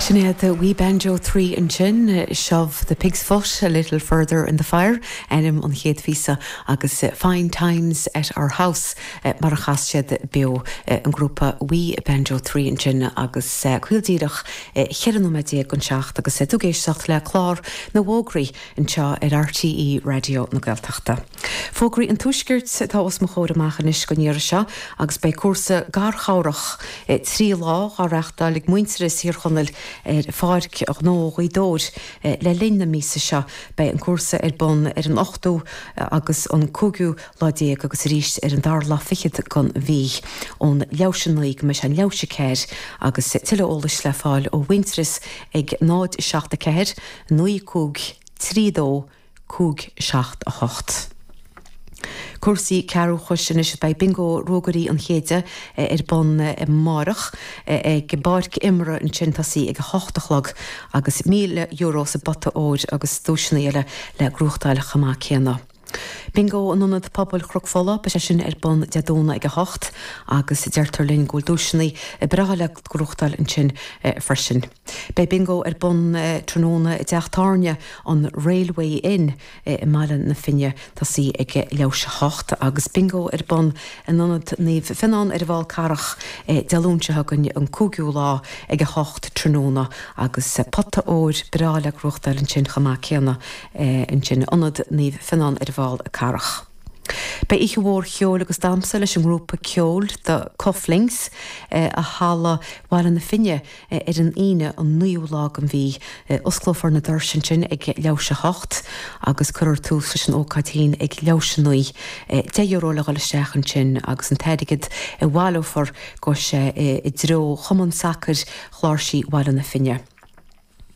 Sin iad We Banjo Three ansin, Shove the Pig's Foot a Little Further in the Fire ainm an chéad phíosa agus Fine Times at Our House mar a chas siad beo, an grúpa We Banjo Three ansin agus caol díreach cheithre nóiméad déag don seacht agus tú ag éisteacht le clár na bhfógraí anseo ar RTÉ Raidió na Gaeltachta. Fógraí an Tuaiscirt atá os mo chomhair amach anois den iarraidh seo agus beidh cúrsa garchabhrach trí lá á reachtáil ag Muintearas Thír Chonaill ar Pháirc Ghnó Ghaoth Dobhair le linn na míosa seo. Beidh an cúrsa ar bun ar an 8ú agus an 5ú lá déag agus arís ar an dara lá fichead den mhí. Ón leathuair tar éis a naoi go mbeidh sé ina leathuair tar éis a ceathair agus tuilleadh eolais le fáil ó Mhuintearas ag 0 7 4 9 5 3 2 5 7 8 Cúrsaí cearrbhachais anois beidh Bingo Ruagairí an Chéididh ar bun amárach ag a bpáirc imeartha ansin ag tosaí ag a hocht a chlog agus €1,000 sa bpota óir agus duaiseanna eile le gnóthachtáil chomh maith céanna. Bingo in Ionad Pobail Chnoc Fola, beidh sé sin ar bun Dé Domhnaigh ag a hocht agus deirtear linn go bhfuil duaiseanna breátha le gnóthachtáil ansin freisin. Beidh Bingo ar bun tráthnóna i dteach tábhairne an Railway Inn i mBaile na Finne. Ag tosaí ag leathuair tar éis a hocht agus Bingo ar bun in Ionad Naomh Fionán ar an bhFál Carrach Dé Luain seo chugainn, an 5ú lá, ag 8 tráthnóna agus pota óir breá le gnóthachtáil ansin chomh maith céanna ansin in Ionad Naomh Fionán ar an bhFál Carrach. Beidh oíche mhór cheoil agus damhsa leis an ngrúpa ceoil The Cufflinks i halla Bhaile na Finne, Ar an Aoine an 9ú lá den mhí, osclófar na doirse ansin ag leathuair tar éis a hocht agus cuirfear tús leis an ócáid féin ag leathuair tar éis a naoi. Deich euro le dhul isteach ansin agus an t-airgead a bhaileofar, gabhfaidh sé i dtreo Chumann Sacair Chláirsí Bhaile na Finne.